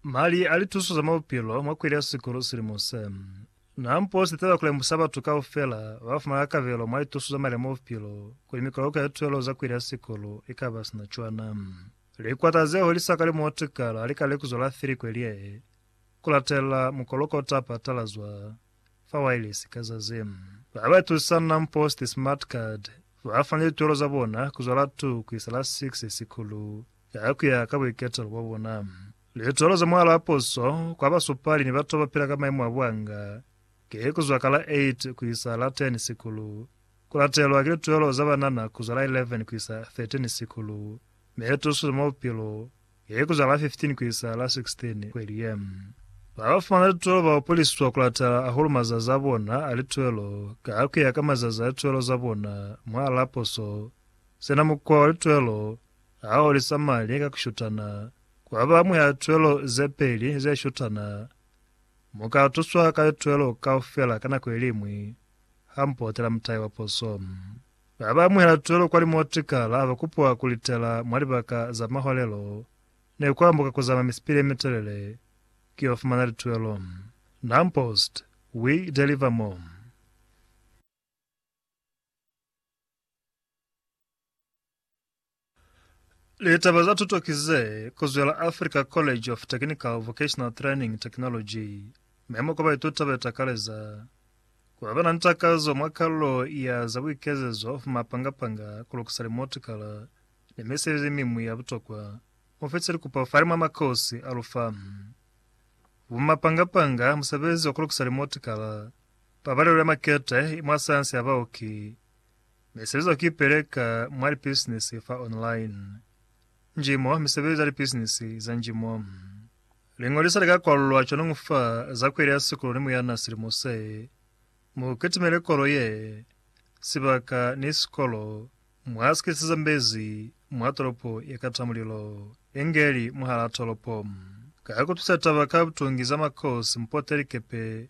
Mali a lituso za mwa bupilo mwa kweli ya sikulu silimo se. Na mpo si taba ku lemusa batu kaufela ba fumana kabelo mwa lituso za mali a mwa bupilo kuli mikoloko ya lituelo za kweli ya sikulu i ka ba sina cwana. Likwata ze holi sa kalimu wa tukala li ka lekuzwa la Filikweliae ku latelela mukoloko o ta patalazwa. fa wailesi ka za ze ba ba tusana mpost smart card ba fana lituelo za bona ku zwa la 2 ku isa la 6 sikulu ka ku ya ka buiketelo bwa bona. Lituelo za mwalo a puso kwa basupali ni batu ba ba pila ka maimo a buanga ki ku zwa ka la 8 ku isa la 10 sikulu, ku latelwa ki lituelo za banana ku zwa la 11 ku isa 13 sikulu, mi tuso za mwa bupilo He ku zwa la 15 ku isa la 16 kweli ye, ba ba fumana lituelo ba upulisiswa ku latala hahulu mazazi a bona a lituelo ka ku ya ka mazazi a lituelo za bona mwa la poso. Sina mukwa wa lituelo ha o lisa mali ka ku shutana, kwa ba mwa lituelo ze peli ze shutana. Mu ka tuswa ka lituelo kaufela ka nako ye liñwi ha mu potela mutai wa poso. Ba ba amuhela tuelo kwa limotikala ba kupiwa ku litela mwa libaka za maholelo ne ku ambuka ku zama misipili ye mitelele ku yo fumana lituelo. Nam Post, We Deliver More. Litaba za tuto ki ze kuzwela Africa College of Technical Vocational Training Technology. Memo kwa baituta be takaleza ku ba na ni takazo mwa kalulo ya za buikezezo fa mapanga-panga, ku lukisa limotikala, ni misebezi miñwi ya butokwa. Mu fitise likupo fani mwa makosi a lu famu. Bumapanga-panga, musebezi wa ku lukisa limotikala, pabalelo ya makete, mwa sayansi ya baoki, Mesezo ki peleka mwa lipisinisi fa online. Njimo, misebezi ya lipisinisi za njimo. Liñoliso lika kwalulwa cwanungu fa za kweli ya sikulu ni muyana silimo se. Mu kitimele kolo ye, sibaka, ni sikolo mwa si kisizambezi mwa tolopo ye kata mulilo, inge li mwahalaa tolopo. Ka kutusa taba ka butungi za makosi, mpote likepe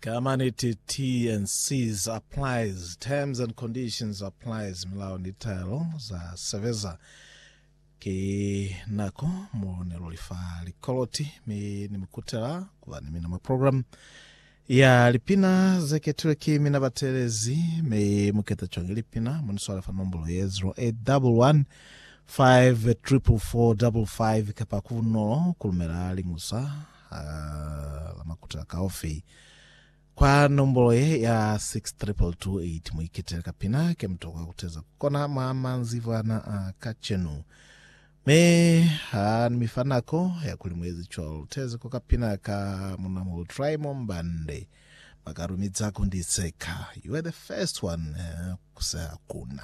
Ka maniti, T&Cs applies, terms and conditions applies, milao ni taelo za sebeza. Ki nako mo ne lu li fa likoloti mi ni mu kutela ku ba ni mina mwa programu. Ya lipina ze ketilwe ki mina ba teelezi, mi mu keta cwang lipina? Mu ni swale fa nombolo ye, 0811 544 55, kapa ku bunolo ku lumela liñusa ha la makuta a kaofi kwa nombolo ye ya 62228. Mu iketele kapina ke mu tokwa ku teza ku kona mwa manzibwana a kacenu. Mi ha ni mi fa nako ya kuli mu ezi cwalo, tezi ko ka pina ka Munamuhulu Trymore Mbande, ba ka lumiza ku ndi seka, You were the first one, ku seha kuna.